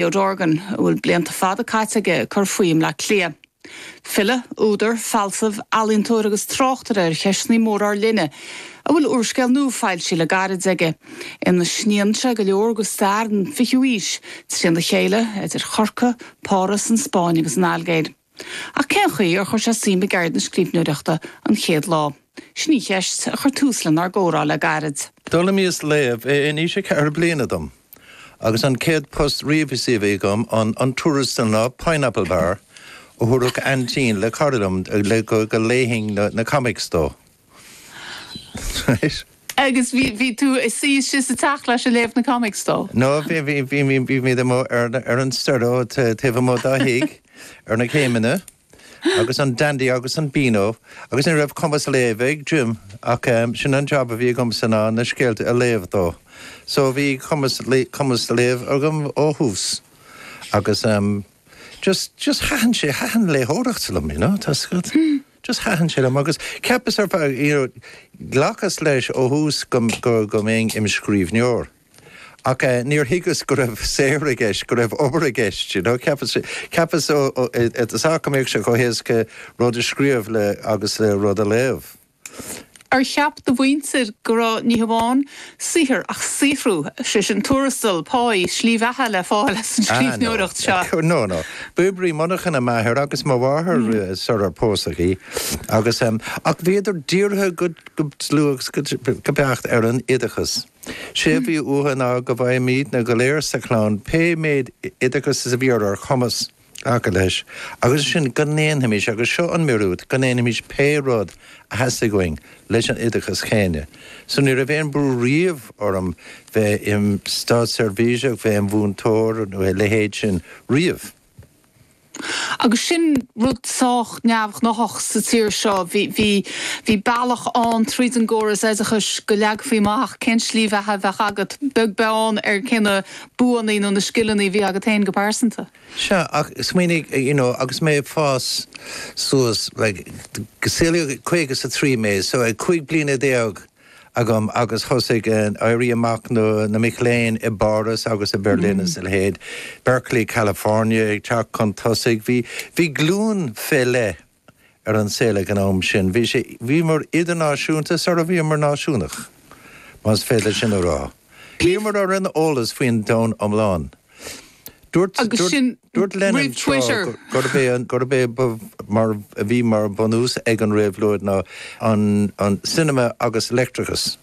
Theo Dorgan, a bhfuil blianta fada caite aige ag cur faoi i mBleá Cliath. File, údar, fealsamh, ealaíontóir agus tráchtaire ar cheisteanna móra ár linne, a bhfuil úrscéal nua foilsithe le gairid aige, ina sníonn sé go leor de stair an fichiú aois, trína chéile, idir Chorcaigh, Páras, an Spáinn agus an Ailgéir. Ach cén chaoi ar chuir sé suim i gceird na scríbhneoireachta an chéad lá? Sin an cheist a chuir tús lenár gcomhrá le gairid. D'fhoghlaimíos léamh in aois a cheithre bliana dom, agus an chéad phost riamh is a bhí agam an an tuarastal ná pineapple bar a thabharfadh aintín le cara liom le go léifinn na comics dó. Right. Agus bhí, bhí tú suí istigh sa teach leis a' léamh na comics dó? No, bhí, bhí, bhí, bhí, bhí muid amuigh ar, ar an staighre ta, taobh amuigh dá thigh, ar na céimeanna, agus an Dandy agus an Beano, agus ní raibh cumas léimh ag Jim, ach ehm, sin an job a bhí agamsa ná na scéalta a léamh dó. So bhí cumas, cumas léimh agam ó thús. Agus ehm, just, just thaitin sé, thaitin léitheoireacht liom, you know, tá 'fhios agat. just thaitin sé liom agus cheapas ar feadh, you know, ghlacas leis ó thús go, go, go mbeinn im' scríbhneoir ach eh níor thuigeas go raibh saothar i gceist, go raibh obair i gceist, you know, cheapas, cheapas ó, ó, eh, is dóigh go mbeadh sé chomh héasca rud a scríobh le, agus le rud a léamh. Ar cheap do mhuintir go raibh ní hamháin saothar ach saothrú, sé sin tuarastal, páí, slí bheatha le fáil as an scríbhneoireacht seo? Ah, no. No, no. B'oibrí monarchan é m'athair agus mo mháthair sar ar pósadh í agus, ach bhíodar dírithe go dlúth go beacht ar an oideachas. Sé a bhí uathu ná go bhfaighimidne go léir sa chlann pé méid oideachais is a bhí ar ár chumas. Glacadh leis, agus ansin, go ndéanfaimis, agus seo an míorúilt, go ndéanfaimis pé rud a theastaigh uainn leis an oideachas céanna. So ní raibh aon bhrú riamh orm bheith im státseirbhíseach, bheith im mhúinteoir nó a leithéid sin, riamh. Agus sin rud sách neamhghnáthach sa tír seo. Bhí, bhí, bhí bealach ann tríd an gcóras oideachais go leagfaí amach cén tslí bheatha a bheadh agat, beag beann ar cé na buanna nó na scileanna a bhí agat féin go pearsanta. Sea, ach smaoinigh, you know, agus mé ag fás suas, like, saolaíodh caoga is a trí mé, so ag cúig bliana déag agam agus thosaigh an Éirí Amach na na mic léinn i bPáras agus i mBerlin is a leithéid, Berkeley, California ag teacht chun tosaigh, bhí bhí glúin fé leith ar an saol ag an am sin. Bhí sé, bhíomar idirnáisiúnta sara bhíomar náisiúnach, más féidir sin a rá. Bhíomar ar an eolas faoin domhan iomlán. Dúirt, dúirt, dúirt Lenin tráth gurb é, gurb é ba, mar, a bhí mar bhunús ag an réabhlóid ná an, an cinema agus leictreachas.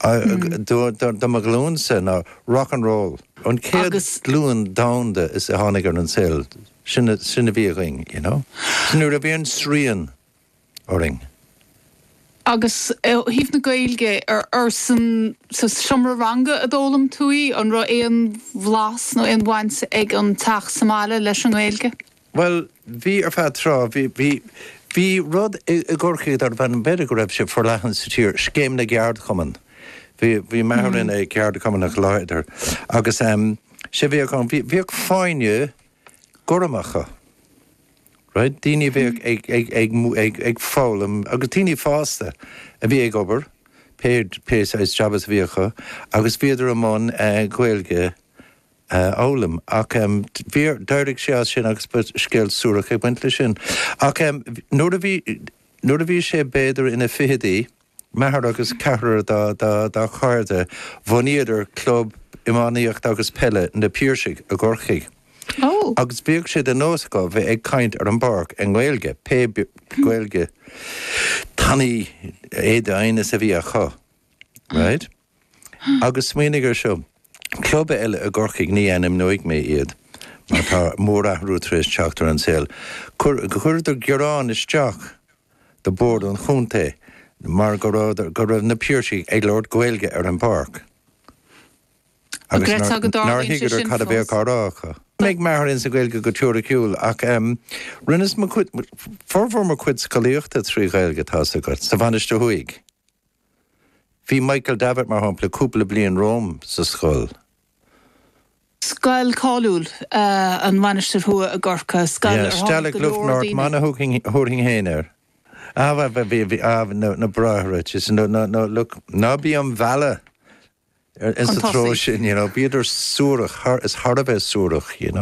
Do, do, do mo ghlúinse ná rock and roll an chéad ghlúin domhanda a tháinig ar an saol. Sin a bhí againn, you know. So ní raibh aon srian orainn. Agus ó thaobh na Gaeilge, ar sa seomra ranga a d'fhoghlaim tú í? An raibh aon bhlas nó aon bhaint ag an teach sa mbaile leis an nGaeilge? Bhuel, bhí ar feadh tráth. Bhí, bhí, bhí rud i gCorcaigh darbh ainm, b'fhéidir go raibh sé forleathan sa tír, Scéim na gCeardchumann. Bhí, bhí m'athair ina cheardchumannach láidir agus sé bhíodh ann, bhíodh fáinní, gorma acu, right, daoine a bheadh ag, ag foghlaim agus daoine fásta a bhí ag obair, pé, pé saghas jab is a bhí acu agus bhíodar i mbun Gaeilge a fhoghlaim ach bhí, d'éirigh sé as sin agus ba scéal suarach ag baint leis sin. Ach nuair a bhí, nuair a bhí sé b'fhéidir ina fhichidí, M'athair agus ceathrar dá chairde, bhunaíodar club iománaíochta agus peile, Na Piarsaigh, i gCorcaigh. Agus bhíodh sé de nós acu bheith ag caint ar an bpáirc i nGaeilge, pé Gaeilge tanaí é d'aighneas a bhí acu. Agus smaoinigh ar seo, club eile i gCorcaigh, ní ainmneoidh mé iad mar tá mórathrú tar éis teacht ar an saol, chuireadar gearán isteach do Bhord an Chontae mar go raibh na Piarsaigh ag labhairt Gaeilge ar an bpáirc agus nár thuigeadar cad a bhí á rá acu. Bhí m'athair ar son na Ghaeilge go teoiriciúil ach rinneas formhór mo chuid scolaíochta trí Ghaeilge, tá's agat, sa Mhainistir Thuaidh. Bhí Michael Davitt, mar shampla, cúpla bliain romham sa scoil. Scoil cháiliúil an Mhainistir Thuaidh i gCorcaigh, scoil ar tháinig go leor daoine. na bráithre, ná bí am mhealladh sa treo sin, bhíodar suarach, thar a bheith suarach.